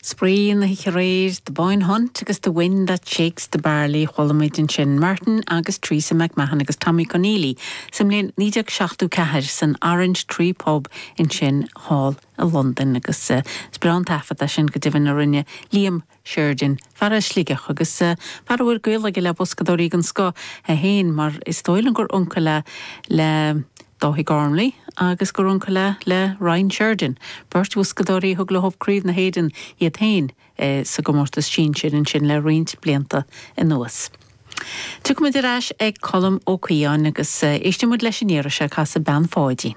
Spraoi na hoíche aréir, The Boyne Hunt agus The Wind that Shakes the Barley. Chuala muid ansin Martin agus Teresa McMahon agus Tommy Conneely sa mbliain 1974 san Orange Tree Pub ansin thall i Londain agus is breá an taifead é sin go deimhin a rinne Liam Sheridan, fear as Sligeach agus fear a bhfuil gaol aige le boscadóirí den scoth, é héin mar is dóigh liom gur uncail é le Dáithí Gormley agus gur uncail é le Ryan Sheridan, beirt bhoscadóirí a thug leob craobh na hÉireann iad héin sa gcomórtas sinsir ansin le roinnt blianta anuas. Tiocfaidh muid ar ais ag Colm Ó Caodháin agus éistfidh muid leis an iarraidh seo ag casadh Bean Pháidín.